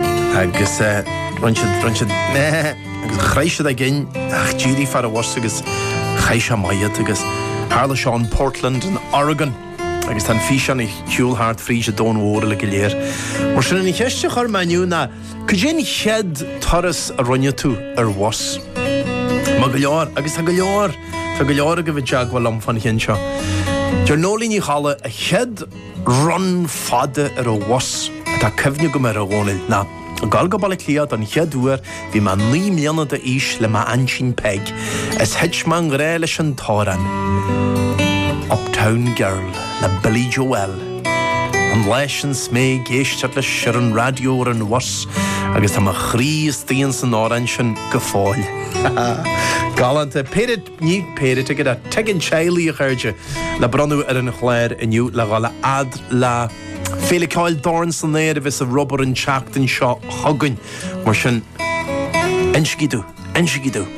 Agus bhronn siad, bhronn siad agus chroith siad againn ach d'éirigh fear an bhus agus chaith sé amach iad agus tharla seo in Portland in Oregon agus tá an físeán ag siúl thart fríd an domhan mhór uilig go léir. Mar sin an cheist a chuir mé inniu ná cad é an chéad turas a rinne tú ar bhus? Má go leor, agus tá go leor, tá go leor agaibh i dteagmháil liom fán cheann seo. Deir Nóilín Ní Cholla an chéad. run fada ar an bhus atá cuimhne agam air a Dhónaill ná ag dul go Baile Átha Cliath don chéad uair bhí mé naoi mbliana d'aois le m'aintín Peig is thit mé i ngrá leis an t-amhrán Uptown Girl le Billy Joel an lá sin 's mé ag éisteacht leis ar an raidió ar an bhus agus tá mo chroí istigh insan amhrán sin go fóill. Galánta. Peter. Ní péire ticéad, ticéad teaghlaigh, a chairde, le bronnadh ar an chlár inniu le dhul a fhad le Féile Ceoil Dorn san Aer a bheas ar obair an tseachtain seo chugainn. Mar sin, insígí domh, insígí domh.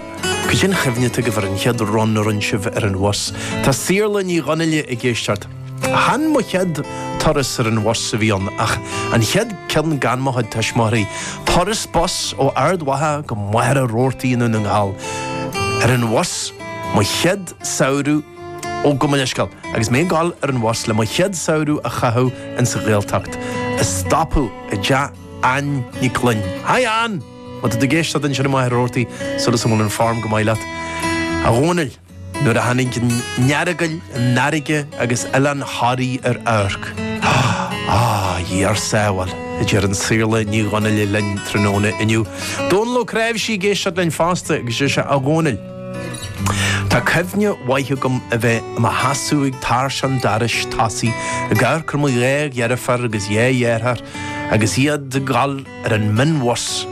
Cad é an chuimhne atá agaibh ar an chéad run a rinne sibh ar an bhus? Tá Saorla Ní Dhonnaile ag éisteacht. Chan mo chéad turas ar an bhus a bhí ann, ach an chéad ceann gan mo chuid tuismitheoirí. Turas bus ó Ard Mhacha go Machaire Rabhartaigh i nDún na nGall. Ar an bhus mo chéad samhradh, ó gabh mo leithscéal, agus mé ag dul ar an bhus le mo chéad samhradh a chaitheamh ins an Ghaeltacht, ag stopadh i dteach Anne Nic Ghloinn. Hi Anne! Má tá tú ag éisteacht ansin i Machaire Rabhartaigh, súil is go bhfuil an fhoirm go maith leat, a Dhónaill. Nuair a tháinig an Earagail, an fharraige agus Oileán Thoraí ar amharc, á, Dia ár sábháil, a deir an Saorla Ní Dhonnaile linn tráthnóna inniu. Dónall Ó Cnáimhsí ag éisteacht linn fosta agus is ea, a Dhónaill, tá cuimhne mhaith agam a bheith i mo sheasamh ag tairseach an dorais tosaigh ag amharc ar mo dhá dheirfiúr agus dhá dheartháir agus iad ag dul ar an mionbhus,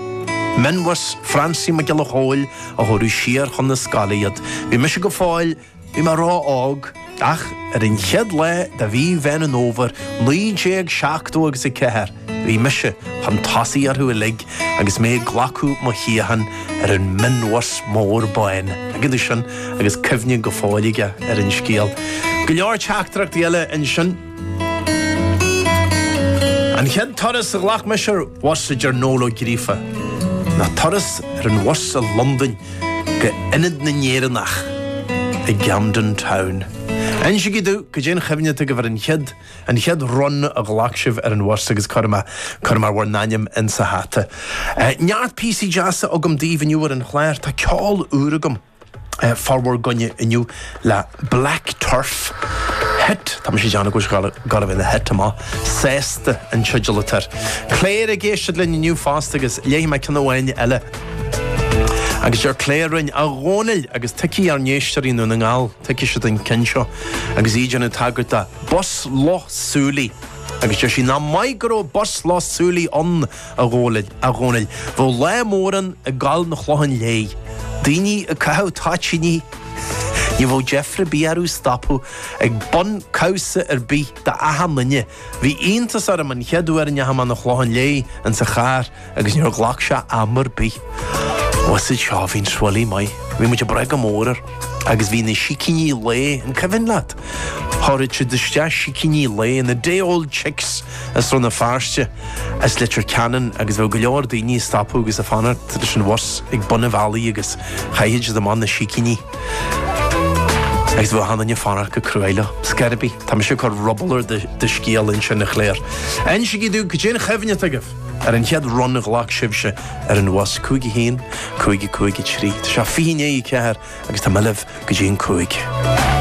mionbhus Francie Mac Giolla Chóill, a thabharfadh siar chun na scoile iad. Bhí mise go fóill, bhí mé ró-óg, ach ar an chéad lá de mhí Mheán an Fhómhair, 1970 agus a ceathair, bhí mise chun tosaigh orthu uilig agus mé ag glacadh mo shuíochán ar an mionbhus mór bán. Ag an aois sin, agus cuimhne go fóill aige ar an scéal. Go leor teachtaireachtaí eile ansin. An chéad turas a ghlac mise ar bhus, a deir Noel Ó Gríofa, ná turas ar an bhus i Londain go Ionad na nÉireannach i gCamden Town. Insígí domh, cad é an chuimhne atá agaibh ar an chéad, an chéad run a ghlac sibh ar an bhus agus cuirfidh mé, cuirfidh mé bhur n-ainm in sa hata. Neart píosaí deasa agam daoibh inniu ar an chlár, tá ceol úr agam. formhór againne inniu le black turf, thit, tá mise ag déanamh go bhfuil sé garbh ina thit amach, sásta an teideal atá air. Clare ag éisteacht linn inniu fosta agus léifidh mé ceann amháin eile agus deir Clare linn, 'A Dhónaill, agus tuigfidh ár n-éisteoirí i nDún na nGall, tuigfidh siad an ceann seo, agus í ag déanamh tagairt do Bus Loch Súilí, agus deir sí nach maith go raibh Bus Loch Súilí ann, A Dhónaill, a Dhónaill, bheadh lá mór ann ag gabháil 'na Chlocháin Léith, daoine ag caitheamh toitíní. Ní bheadh deifre ar bith air ag stopadh ag bun cabhsa ar bith d'achan nduine. Bhí iontas orm an chéad uair a ndeachaigh mé 'na Chlocháin Léith insa charr agus níor ghlac sé am ar bith. Usaid seo, bhí an Swilly maith. Bhí muid ag brath go mór air. Agus bhí na sicíní lae, an cuimhin leat? Chuireadh siad isteach sicíní lae, na day old chicks. i Rann na Feirste as Leitir Ceanainn agus bheadh go leor daoine ag stopadh agus ag fanacht leis an bhus ag bun an bhealaigh agus chaithfeadh siad amach na sicíní agus bheadh achan duine ag fanacht go cruaidh leo. Scor ar bith. Tá mise ag cur ruball ar do scéal ansin a Chláir. Insígí domh goidé an chuimhne atá agaibh ar an chéad run a ghlac sibhse ar an bhus, 51, 55, 3. Tá sé 20 i ndiaidh a 4 agus tá muid libh go dtí an cúig.